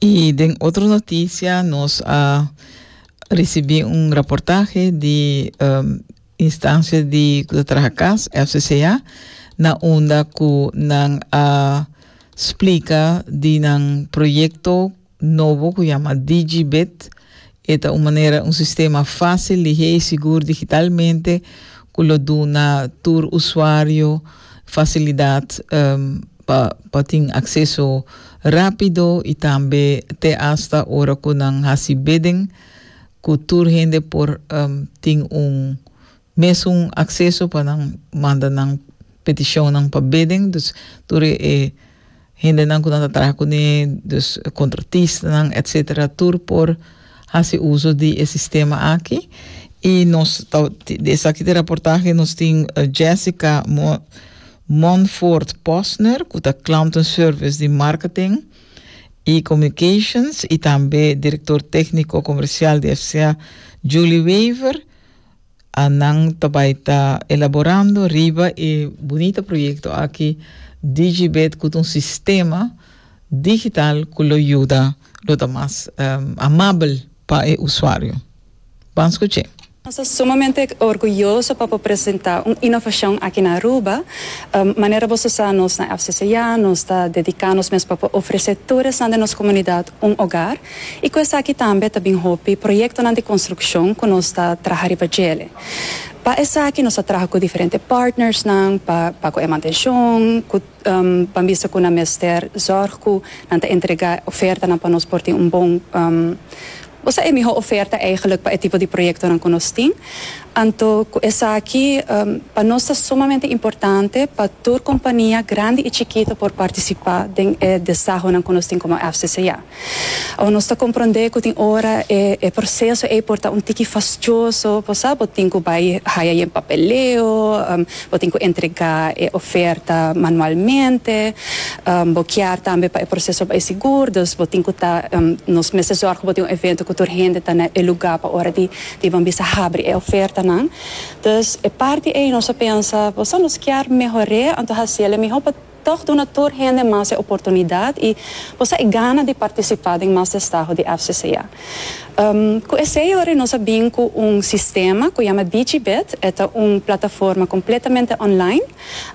I den otro notisia nos a risibí un raportahe di um, instansia di ku ta traha kas, FCCA, na unda ku nan a splika di nan proyekto nobo ku yama DigiBit. E ta un manera, un sistema fásil, lihé i sigur digitalmente ku lo duna tur usuario fasilidat pa pa tin akseso rápido i tambe te asta ora ku nan hasi bidding ku tur hende por tin un Mesun acceso pa nan manda nan peticionnan pa bidding, dus tur e hendenan cu nan ta traha cune, dus contratistanan etc. Tur por haci uzo di e sistema aki y nos ta di esaki ta e raportahe, nos tin Jessica Montfort Posner cu ta Clanton Service di Marketing y Communications y tambe Director Tecnico Comercial di FCA Julie Wever. a nan ta bai ta elaborando riba e bunita proyekto aki DigiBed ku ta un sistema digital ku lo yuda lo ta mas amabel pa e usuario. Ban skuch'é. Nos ta sumamente orguyoso pa por presentá un inovashon aki na Aruba. Manera boso sa, nos na FCCA nos ta dediká nos mes pa por ofresé tur esnan den nos komunidat un ogar. I ku esaki tambe ta bin hopi proyektonan di konstrukshon ku nos ta traha riba djele. Pa esaki nos a traha ku diferente partnersnan pa pa ku e mantenshon ku pa bisa ku nan mester zòrg ku nan ta entregá e ofertanan pa nos por tin un bon bo sa e mihó oferta eigelik pa e tipo di proyektonan ku nos tin. Anto ku esaki pa nos ta sumamente importante pa tur kompania grandi i chikito por partisipá den e desahonan ku nos tin komo FCCA. Awa nos ta comprende cu tin ora e proceso ey por ta un tiki fastioso, por sa bo tin cu bay haya yen papeleo, bo tin cu entrega e oferta manualmente, bo kier tambe pa e proceso bay sigur, dus bo tin cu ta, nos mester zorg cu bo tin un evento cu tur hende ta na e lugar pa ora di di bo bisa habri e ofertanan, dus e parti ey nos a pensa, por sa nos kier mehore, anto haciele miho pa. Tòg duna tur hende mas e oportunidat i por sa e gana di partisipá den mas destaho di FCCA. Ku esei yori nos a bin ku un sistema ku yama Digibid, e ta un plataforma kompletamente online,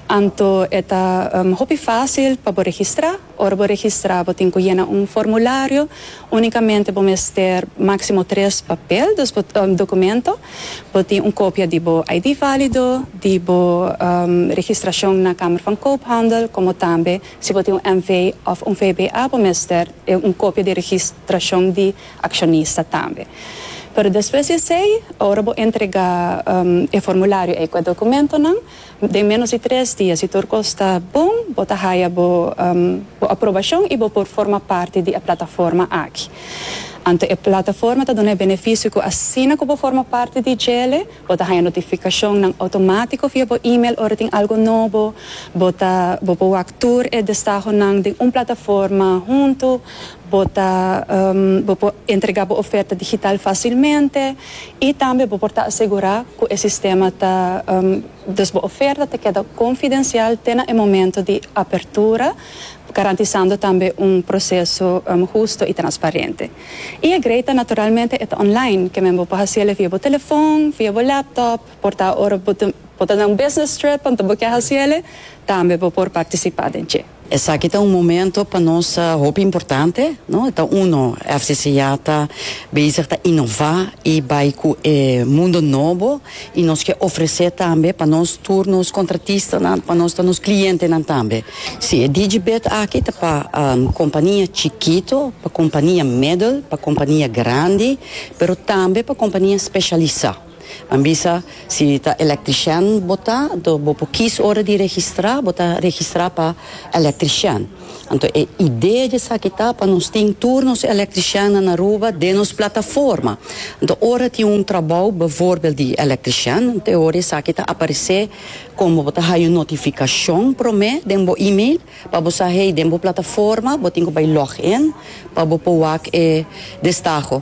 anto e ta hopi fásil pa bo registrá. Ora bo registrá bo tin ku yena un formulario, Únikamente bo mester máksimo tres papel dus bo dokumento, bo tin un kopia di bo ID válido, di bo registrashon na Kamer van Koophandel, komo tambe si bo tin un NV òf un VBA bo mester un kopia di registrashon di akshonista tambe. Pero despues di esei, ora bo entregá e formulario ei ku e dokumentonan, Den ménos di tres dia, si tur kos ta bon, bo ta haya bo bo aprobashon i bo por forma parti di e plataforma aki. Anto e plataforma ta duna e benefisio ku asina ku bo forma parti di djele, bo ta haya notifikashonnan outomátiko via bo email ora tin algu nobo, bo ta bo por wak tur e destahonan den un plataforma huntu, bo ta bo por entregá bo oferta digital fásilmente, I tambe bo por ta asegurá ku e sistema ta Dus bo oferta ta keda konfidensial te na e momento di apertura, garantisando tambe un proseso husto i transparente. I e greita naturalmente e ta online, ke men bo por hasi ele via bo telefòn, via bo laptop, por ta ora bo ta den un business trip enta bo ke hasi ele, tambe bo por partisipá den dje. Esaki ta un momento pa nos hopi importante, no? Ta uno, FCC ya ta bezig ta inova y bay cu e mundo nobo y nos ke ofrece tambe pa nos tur nos contratistanan, pa nos ta nos clientenan tambe. Si, e Digibet aki ta pa compania chikito, pa compania middel, pa compania grandi, pero tambe pa compania specialisa. Nan bisa, Si ta electrician bo ta, anto bo por kies ora di registra, bo ta registra pa electrician. Anto e idea di esaki ta pa nos tin tur nos electriciannan na Aruba den nos plataforma. Anto ora tin un trabou bevoorbeeld di electrician, te ora esaki ta aparece como bo ta haya un notificacion prome den bo email pa bo sa hey den bo plataforma bo tin cu bay log in pa bo por wak e destaho.